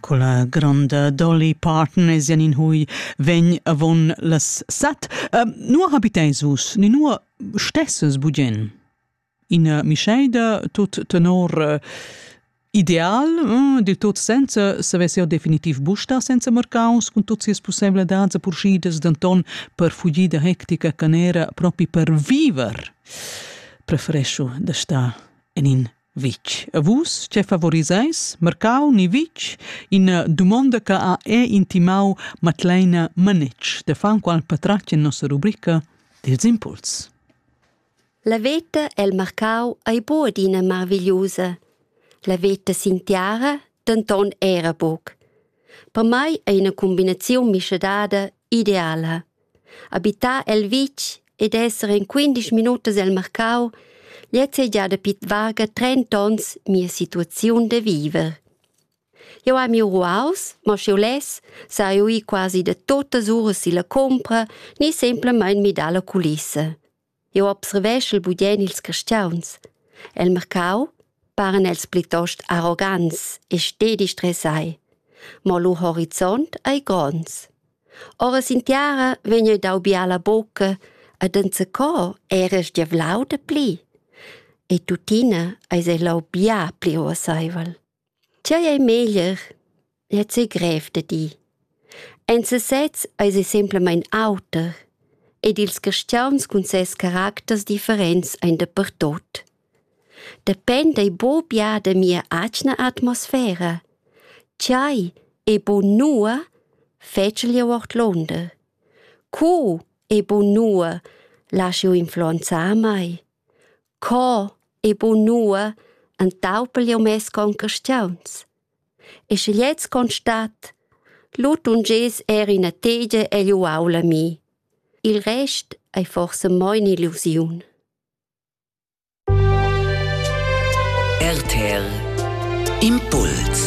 Quella granda Dolly Parton es in hui vegn avon las set. Uh, nur habitais vus, ni nur stesses bugen? In uh, mischeida tut tenor uh, ideal, uh, del tot senza savesser definitiv busta senza marcaus cun tot sias possibilitats e purschidas denton per fugir da hectica canera propi per viver. Preferescio da sta in in Vitg. A vus, che favorisais mercau ni vitg, ina dumonda che ha è intimau Matleina Manetsch da Fanqual Patratg en nossa rubrica dils impuls. La veta el marcau ei bod ina marvigliusa. La veta sin tiara denton era buc. Per mai ei una combinaziun mischadada ideala. Habitar el vitg ed esser in quindesch minutas el marcau gliez ei gia dapi varga trenta onns mia situaziun da viver. Jeu hai miu ruaus, mo sch'jeu less, sai jeu ir quasi da tuttas uras silla cumpra ni semplamein midar la culissa. Jeu observeschel bugen ils cristiauns. El mercau paran els plitost arrogants e stedi stressai. Mo lu horizont ei gronds. Ora sin tiara vegn jeu dau biala bucca ed enzacò era sgiavlau de pli. E tuttina eis ei lau bia pli urseivel. Tgei ei meglier? Lez ei grev da dir. En sesez eis ei semplamein auter ed ils caschiauns cun ses caracters differents ein dapertut. Dependa ei buca bia da mia atgna atmosfera. Tgei ei buc nua, fetschel jeu ordlunder. Co ei buc nua, lasch jeu influenzar mei? Co e bunua entaupel jeu mes concastiuns. E sche gliez constat, lu tungess er ina tegia egl uaul a mi. Il rest ei forsa mo in'illusiun. RTL Impuls